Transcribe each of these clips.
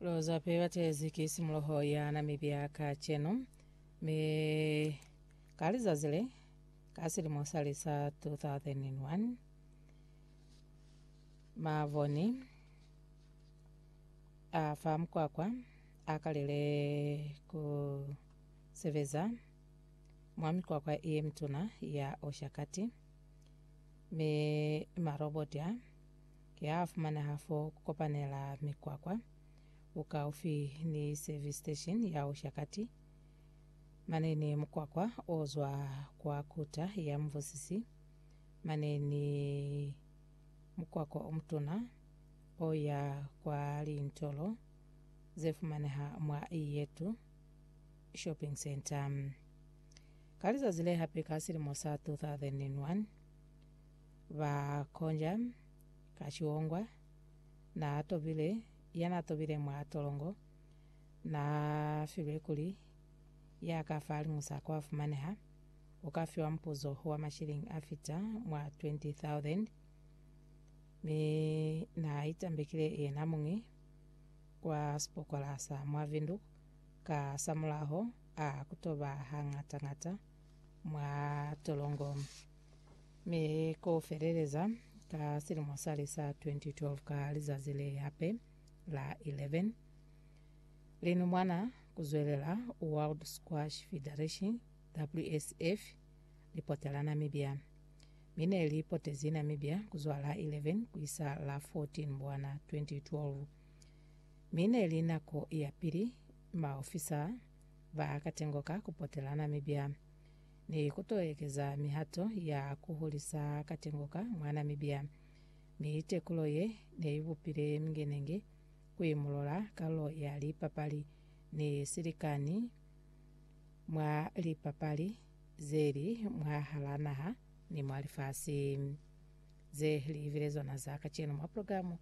Lozape batezi ki simuloho ya Namibia kacenu, mi ka lizazi le ka silimo sa lisa 2001 mavoni a fa mukwakwa a kalile ku sebeza mwa mikwakwa ye mituna ya Oshakati, mi maroboti a Ki ha fumaneha fo ku kopanela mikwakwa, bukaufi ni service station ya Ushakati. Mane ni mukwakwa o zwa kwa Kuta ya Muvusisi. Mane ni mukwakwa o mutuna o ya kwa lintolo ze fumaneha mwa Iyetu Shopping Centre. Ka lizazi le hape ka silimo sa 2001, Ba konja ka ciongwa, na tobile, ya na tobile mwa tolongo, na filwe kuli, ya ka fahalimu sa kwa fumaneha, uka fiwa mupuzo wa mashilingi a fita mwa 20,000. Mi na itambekile yena muñi kwa sipokola sa mwa Windhoek, ka samulaho a kutoba hangata-ngata mwa tolongo. Mi ku feleleza ka silimo sali sa 2012 ka lizazi le hape la 11, linumwana ku zwelela World Squash Federation, WSF, li potela Namibia. Mi ne li potezi Namibia ku zwa la 11 ku isa la 14 Mbwana 2012. Mi ne li nako ya pili maofisa ba katengo ka ku potela Namibia. ni ku to ekeza mihato ya ku hulisa katengo ka mwa Namibia, mi tekulo ye ne i bupile mingenenge ku imulola kalulo ya lipapali ni silikani mwa lipapali ze li mwahal'a naha ni mwa lifasi. Ze li bile zona za kacenu mwa progilamu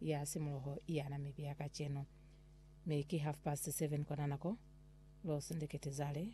ya simuloho ya Namibia kacenu, mi ki half past seven kwa na nako. Lo sindikitizale